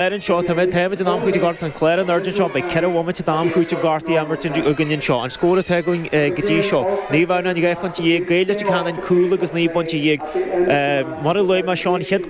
Ar an seo, tá mé ag taobh amuigh den am cúitimh Ghort an Chléir anoir. Ar an seo, beidh ceithre bhomaite d'am cúitimh gortaithe á imirt againn anseo. An scór atá againn go dtí seo, naoi bhfonn, dhá phointe dhéag, Gaeil Leitir Ceanainn cúl agus naoi bpointe dhéag. Mar a luaigh mé anseo, an chéad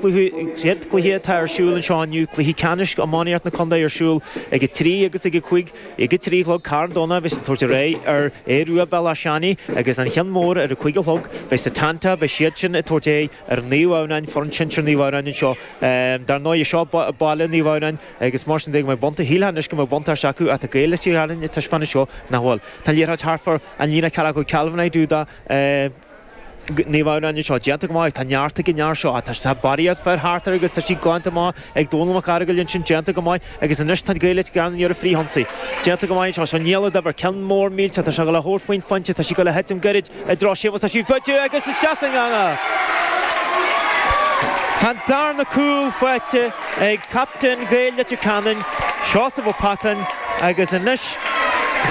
cluiche atá ar siúl anseo inniu, cluiche ceannais iománaíocht na contae ar siúl ag a trí agus ag a cúig, ag a trí a chlog, Carn Domhnach beidh siad ag tabhairt ar aghaidh ar Aodh Ruadh, Béal Átha Seanaidh, agus an ceann mór ar a cúig a chlog, beidh Setanta, beidh siadsan ag tabhairt ar aghaidh ar Naomh Adhamhnáin, foireann sinsir Naomh Adhamhnáin anseo Dar ndóigh, seo baile Naomh Adhamhnáin agus mar sin de, go mbeidh bunta, shílfeá anois go mbeadh buntáiste acu, ach tá Gaeil Leitir Ceanainn ag taispeáint anseo nach bhfuil. Tá liathróid Harpher, an líne a ceapadh ag Calvin i dTúdá Naomh Adhamhnáin anseo, déanta go maith agus tá neart ag an fhear seo. Tá barraíocht fear thart air agus tá sí glanta amach ag Dónall Mac Fhearghaile ansin, déanta go maith agus anois tá na Gaeil Leitir Ceanainn i ndiaidh an fríth-ionsaí. Déanta go maith anseo. Seo néal a d'oibir. Ceann mór millteach. Tá sé le hórphointe faighte. Tá sí ag dul a thitim gairid. I dtreo Séamus tá sí faighte agus isteach san eangach. Tá an darna cúl faighte ag captaen Ghaeil Leitir Ceanainn, Seosamh Ó Peatáin agus anois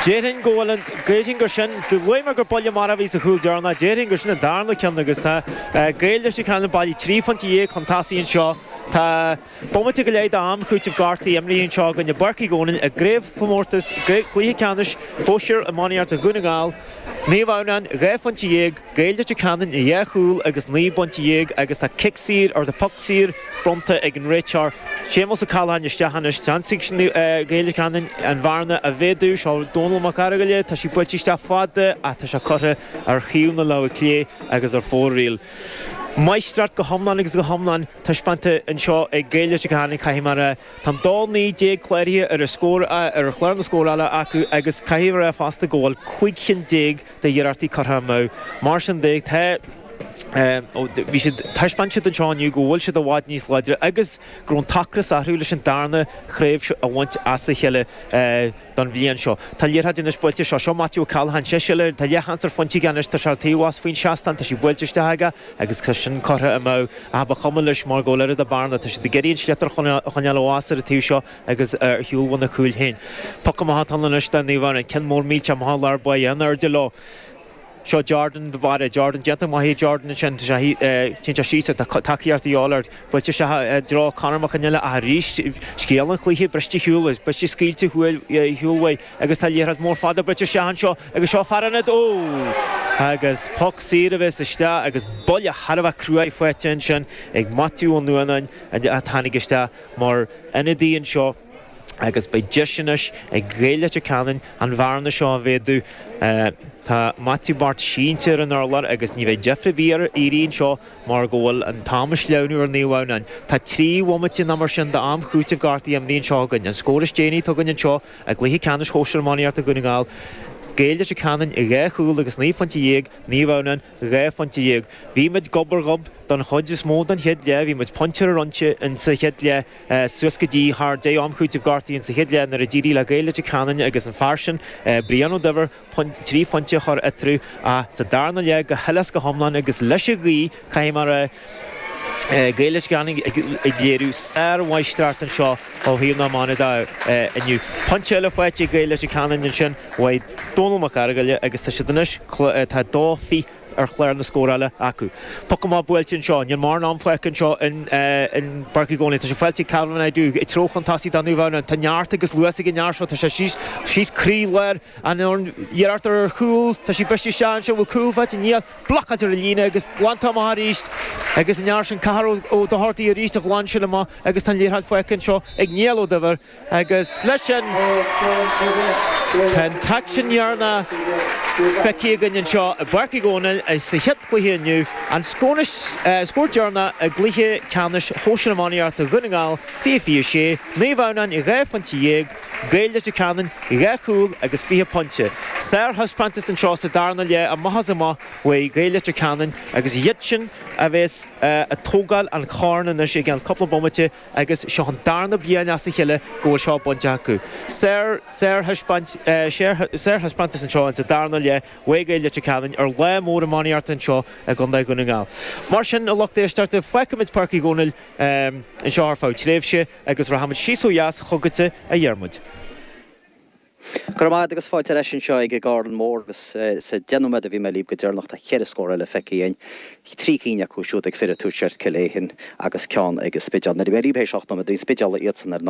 déarfainn go bhfuil an, déarfainn gur sin, luaigh mé gur buille marfa a bhí sa chúl deireanach, déarfainn gur sin an darna ceann agus tá Gaeil Leitir Ceanainn bailithe trí phointe dhéag chun tosaigh anseo. Tá. Bomaite go leith d'am cúitimh gortaithe imithe anseo i gCluiche Páirc Uí Dhónaill i gcraobhchomórtas cluiche ceannais shóisir iománaíocht Dhún na nGall, Naomh Adhamhnáin dhá phointe dhéag, Gaeil Leitir Ceanainn a dhá chúl agus naoi bpointe dhéag agus tá cic saor, nó poc saor, bronnta ag an réiteoir, Séamus Ó Cathalláin isteach anois. Déanfaidh Gaeil Leitir Ceanainn an bhearna a mhéadú. Seo Dónall Mac Fhearghaile, tá sí buailte isteach fada ach tá sé curtha ar thaobh na láimhe clé agus ar fóraoil. Máistreacht go hiomlán agus go hiomlán taispeánta anseo ag Gaeil Leitir Ceanainn caithfidh mé a rá. Tá an dá naoi déag cláraithe ar an scór, ar chlár na scórála acu agus caithfidh mé a rá fosta go bhfuil cúig chinn déag de iarrachtaí curtha amú. Mar sin de, tá, bhuel, bhí siad, thaispeáin siad anseo inniu go bhfuil siad i bhfad níos láidre agus go raibh an t-ocras orthu leis an darna craobh seo a bhaint as a chéile. don bhliain seo. Tá liathróid anois buailte seo. Seo Matthew O'Callaghan, sé soiléir, tá an liathróid ansin faighte aige anois, tá sé ar taobh abhus faoi'n seastán, tá sí buailte isteach aige agus tá sin curtha amach thall ach ba chuma leis mar go bhfuil oiread a' bearna, tá siad ag iarraidh an sliotar a choinneáil abhus ar a' taobh seo agus ar shiúl óna gcúl féin. Poc amach atá ann anois do Naomh Adhamhnáin. Ceann mór millteach, amach sa lár, beidh an airde leo. Seo Jordan do Mháire. Jordan, déanta maith ag Jordan ansin. Tá sí, téann sé síos agus tá tacaíocht ar fáil. Buailte isteach i dtreo Conor Mac an Ille ach arís, scéal an chluiche, briste ar shiúl, briste scaoilte ar shiúl uaidh agus tá liathróid mhór fada buailte isteach anseo agus seo fear an fhad, oh! Agus poc saor a bheas isteach agus buille thar a bheith cruaidh faighte ansin ag Maitiú Ó Nuanáin a tháinig isteach mar ionadaí anseo. agus beidh deis anois ag Gaeil Leitir Ceanainn an bhearna seo a mhéadú. Tá Maitiú Bairt sínte ar an urlár agus ní bheidh deifir ar bith air éirí anseo mar go bhfuil an t-am ag sleamhnú ar Naomh Adhamhnáin. Tá trí bhomaite nó mar sin d'am cúitimh gortaithe imrithe anseo againn. An scór is déanaí a tugadh anseo i gcluiche ceannais shóisir iománaíochta Dhún na nGall, Gaeil Leitir Ceanainn dhá chúl agus naoi phointe dhéag, Naomh Adhamhnáin dhá phointe dhéag. Bhí muid gob ar ghob don chuid is mó den chéad leath, bhí muid pointe ar an ionsaí sa chéad leath, suas go dtí thar deich am cúitimh gortaithe insa chéad leath nuair a d'éirigh le Gaeil Leitir Ceanainn agus an fear sin, Brian Ó Duibhir, trí phointe a chur eatarthu ach sa darna leath go huile is go hiomlán agus leis an ghaoth, caithfidh mé a rá, Gaeil Leitir Ceanainn ag léiriú sár-mháistreacht anseo ó thaobh na hiomána de inniu. Pointe eile faighte ag Gaeil Leitir Ceanainn ansin uaidh Dónal Mac Argaile agus tá siad anois, tá dó fi, ar chlár na scórála acu. Poc amach buailte anseo. Níl mórán ama fágtha anseo i bPáirc Uí Dhónaill. Tá sé faighte ag Calvin Aidoo, ag treabhadh chun tosaigh do Naomh Adhamhnáin. Tá neart agus luas ag an fhear seo. Tá sé síos, síos croí láir an fhoireann. Iarracht ar chúl. Tá sí briste isteach anseo. Bhfuil cúl faighte? Níl. Blocáilte ar an líne agus glantar amach arís. Agus an fear sin, Cathal Ó Dochartaigh arís a ghlan sin amach agus tá an liathróid faighte anseo ag Niall Ó Duibhir. Agus leis sin, tá an t-aicsean deireanach feicthe againn anseo i bPáirc Uí Dhónaill sa chéad chluiche inniu, an scór deireanach i gcluiche ceannais Shóisir Iománaíochta Dhún na nGall, Fiche Fiche Sé, Naomh Adhamhnáin dhá phointe dhéag, Gaeil Leitir Ceanainn dhá chúl agus fiche pointe. Sár-thaispeántas anseo sa darna leath amach is amach uaidh Gaeil Leitir Ceanainn agus iadsan a bheas ag tógáil an choirn anois i gceann cúpla bomaite. Agus seo an darna bliain as a chéile go bhfuil seo bainte acu. Sárthaispeántas anseo insa darna leath, uaidh Gaeil Leitir Ceanainn ar lá mór iománaíochta anseo i gCondae Dhún na nGall. Mar sin, a lucht éisteachta, fágfaimid Páirc Uí Dhónaill anseo ar feadh tréimhse agus rachaimid síos ó dheas chugatsa a Dhiarmuid. Go raibh maith agat agus fáilte ar ais anseo ag an gCarn Mór agus sa deich nóiméad a bhí mé libh go deireanach tá ceithre scór eile feicthe againn, trí cinn acu siúd ag fir an tuaiscirt, Cill Aodhin, agus ceann ag an Spidéal. Nuair a bhí mé libh théis ocht nóiméad bhí an Spidéal iadsan ar